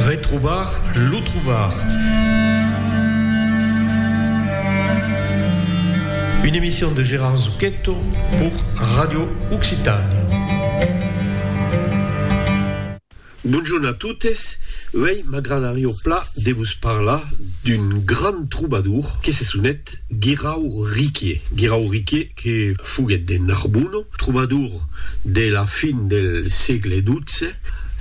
Retrobar lo trobar. Une emission de Gérard Zucchetto pour Radio Occitània. Bonjorn a totes, uèi m'agradarió pla de vos parlar d'un grand trobadour que se sonet Guirau Riquier. Guirau Riquier. que foguèt de Narbona, trobador de la fin del sègle xii.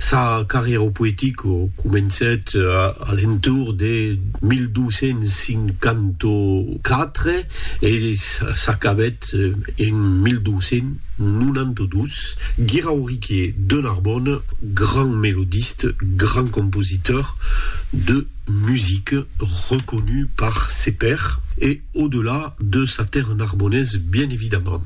Sa carrièra poetica comencèt a l'entorn de 1254 e s'acabèt en 1292. Guirauriquier de Narbona, grand melodiste, grand compositor de musica, reconut par ses pairs e. Au delà de sa terre narbonnaise bien evidemment.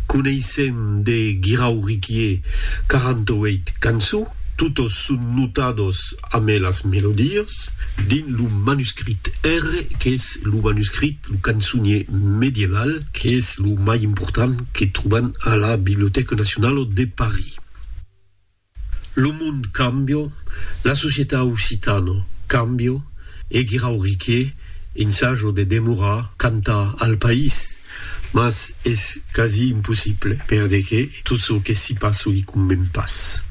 Coneissèm de Guirau Riquier 48 cançons, totes son notados amé las melodies, dins lo manuscrit R, qu'es lo manuscrit, lo cançonier medieval, qu'es lo mai important que trobam a la Bibliothèque Nationale de Paris. Lo mond cambio, la societat occitana cambio e Guirau Riqué ensajo de demorar cantar al país, mas es quasi impossible perdeque tot çò que s'i passa li conven pas.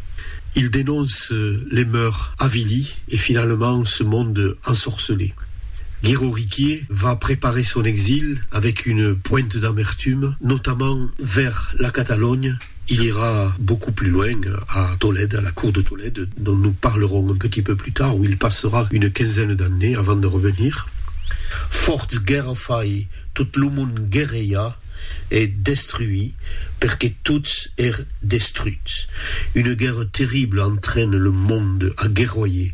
Il denonce les mœurs avilies e finalament ce monde ensorcelé. Guirau Riqué va preparer son exil avec une pointe d'amertume, notamment vers la Catalogne, Il ira beaucoup plus loin a Tolède, a la cour de Tolède, dont nous parlerons un petit peu plus tard, où il passera une quinzaine d'années avant de revenir. Fòrts guèrra fai, tot lo mond guerreja e destruí perque tots ère destruts. Une guèrra terrible entraine le monde a guerroyer.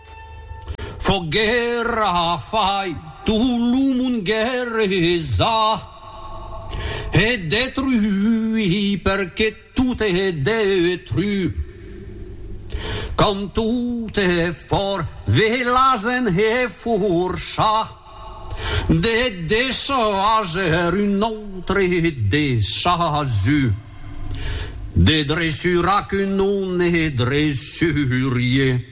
Fòc guèrra fai tot lo mond guerresa e detrui perque tot e detru quand tot e fòr ve la zen e forcha de deshager un autre deshazu de dressura que non e dressurie.